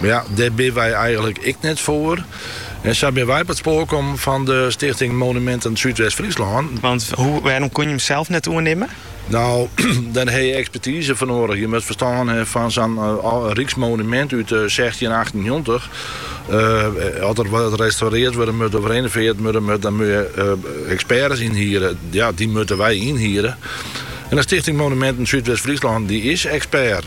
Mar ja, dêr binne wy eigenlik ek net foar. En sa binne wy op it spoar kommen fan de Stichting Monumenten Súdwest-Fryslân. Want wêrom kon je him sels net oernimmen? No, dêr ha je ekspertize foar noadich. Je moatte ferstân ha fan sa'n ryksmonumint út sechstjinhûndertachtennjoggentich. As der wat restaurearre wurde moat of renovearre wurde moat, dan moat je eksperts ynhiere. Ja, dy moatte wy ynhiere. En de Stichting Monumenten Súdwest-Fryslân dy is ekspert.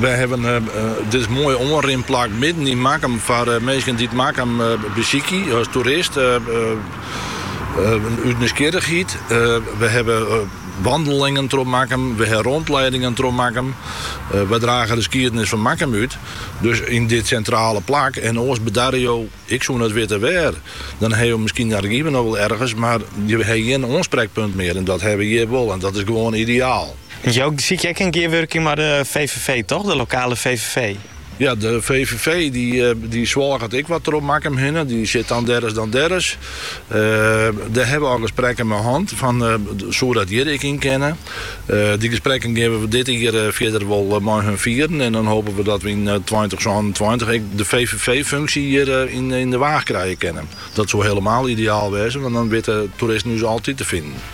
Wy hawwe dit moaie oanrinplak midden yn Makkum foar minsken dy't Makkum besykje as toerist út nijsgjirrichheid. Wy hawwe wandelingen troch Makkum, wy hawwe rondleidingen troch Makkum. Wy drage de skiednis fan Makkum út, dus yn dit sintrale plak. En oars bedarje jo, ik soe net witte wêr. Dan ha jo miskien in argyf noch wol ergens, mar jo ha gjin oansprekpunt mear. En dat ha we hjir wol en dat is gewoan ideaal. Jo sykje ek in gearwurking mei de VVV toch, de lokale VVV? Ja, de VVV dy swalket ek wat troch Makkum hinne. Dy sit dan dêr ris dan dêr ris. Dêr hawwe we al gesprekken mei hân fan soe dat hjir ek yn kinne. Dy gesprekken geane we dit jier fierder wol mei har fieren en dan hope we dat we yn tweintich sânentweintich ek de VVV-funksje hjir yn De Waag krije kinne. Dat soe helemaal ideaal wêze want dan witte toeristen ús altyd te finen.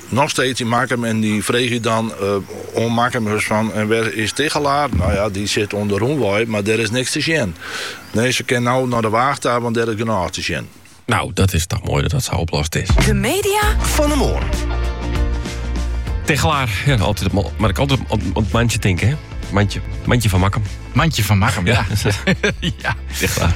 Noch steeds yn Makkum en dy freegje dan oan Makkumers fan, en wêr is Tichelaar? No ja, dy sit oan de rûnwei, mar dêr is niks te sjen. Nee, se kin no nei de Waach ta, want dêr is genôch te sjen. No, dat is toch moai dat dat sa oplost is. De media fan 'e moarn. Tichelaar, ja, altyd, moat ik altyd oan it mantsje tinke, hè? Mantsje, mantsje fan Makkum. Mantsje fan Makkum, ja. ja. ja. Tichelaar.